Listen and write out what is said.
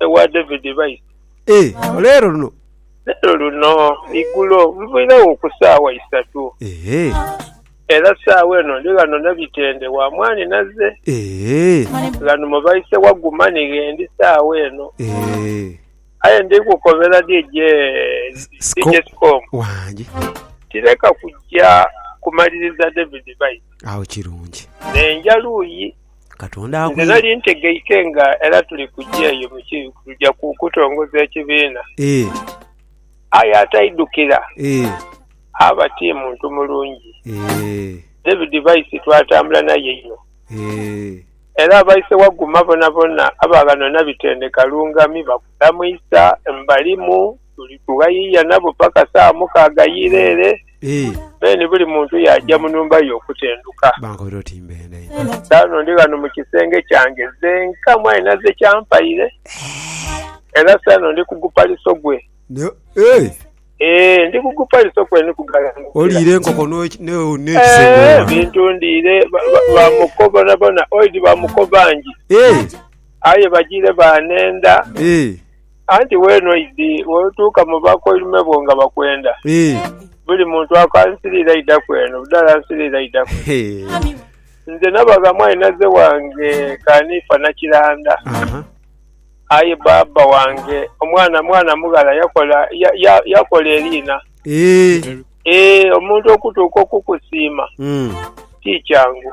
ewa David baise. E, olw'eero luno. Leero luno, igulo, nviiregho ku saawa isatu. E. Era saawa eno ndi ghano na bitende, wa mwaani naze. E. Ghano mu baise wa Guma ni gh'endi saawa eno. E. Aye ndi kukobera DJ, DJ Sikomu. Wangi. Nti leka kujja kumaliriza David baise. Agho kirungi. N'enja luuyi. Katonda akuire. Nze nali ntegeike nga era tuli kuja eyo mu kibi kuja ku kutongoza ekibiina. Aye ataidhukira aba ti muntu mulungi. David Baisi twatambula naye inho. Era abaise waguma bonabona aba ghano Nabitende Kalungami bakulamuisa. Mbalimu. Tuli kubayiiya nabo paka saa mukaaga y'ira ere, then buli muntu yaaja mu nhumba ye okutenduka. Kaakano ndi ghano mu kisenge kyange zenka, mwali naze kyampaire, era saano ndi ku gupaliso gwe. Ee, ndi ku gupaliso kwe ni kugalanukira. Ee, ebintu ndiire ba muko bonabona, oidhi ba muko bangi, aye bajiire baanenda, Anti weene oidhi, bw'olituuka mu bakoirume bo nga bakwenda, buli muntu ako ansiriire aidaku eno, buli ala ansiriire aidaku ere. Nze nabagha mwainhaze wange Kanifa Nakiranda. Aye baaba wange omwana mwana mughala yakola yakola eriina. Eeh, omuntu okutuuka okukusiima ti kyangu.